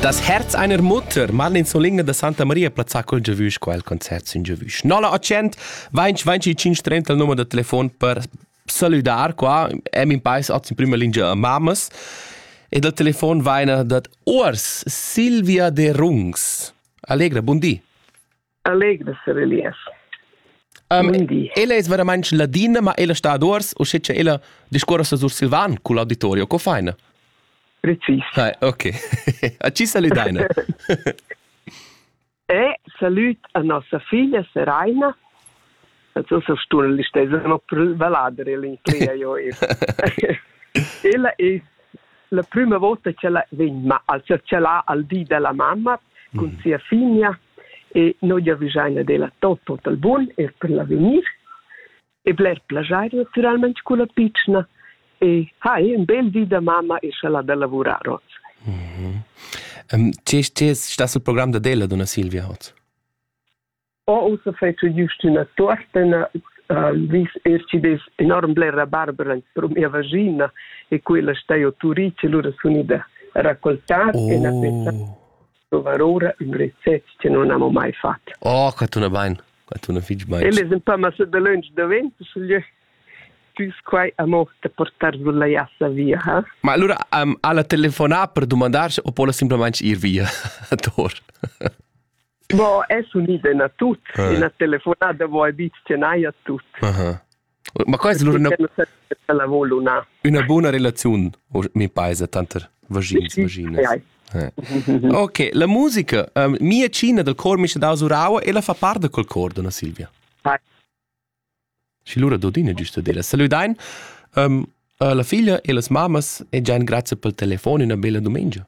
Das Herz einer Mutter, Marlin Soligna da Santa Maria plazzà col giavüsch qua il concert sin giavüsch. 9 20 20 530 il numero da telefon per saludar qua, em in pais oz in prima linea mamas. E dal telefon vaina dat Urs Silvia de Rungs. Allegra, buon di. Allegro ser Elias. Um, ella es veramente ladina, ma ella sta ad ors, o che ella discorra sur Silvan con l'auditorio, co faina? Precis. Ah, ok. A ci saludaina. e salut a nossa figlia Seraina, Att så så stor lista så no vallader el in clia jo. Ella è la prima volta che la vegn ma al cercela al di della mamma con mm. sia figlia e noi gli avvisaina della tot tot bun e per la venir e bler plagiar naturalmente con la piccina e hai un bel di da mamma e sala da lavorare. Mm -hmm. um, ti stai sul programm da della donna Silvia Hotz? Ho ussa fatg giust üna tuortena, vis er chi'd es enorm blera barbera pro mia vaschina e quella sta jo turit e lura sun ida raccoltar oh. e na pensa provar ora ün recept che non amo mai fat. Oh, che tuna bain, che tuna fich bain. El es ün pa massa da lönch davent, sche tü quai amo te portar sulla jassa via, ha? Ma allura um, alla telefonà per dumandar o pola simplesmente ir via a Tor? No, es unida na tut. Eh. Ina telefonada vo abit tenaia tut. Aha. Ma quai è una, una buona relazione, mi paese, tanter vaginas, vaginas. Eh. Ok, la musica, um, mia cina del cor mi c'è da usuraua e la fa parte col cor, donna Silvia. Hi. Și lura Dodine giusto dire. Saludain um, la figlia e las mamas e già grazie pel telefono una bella domenica.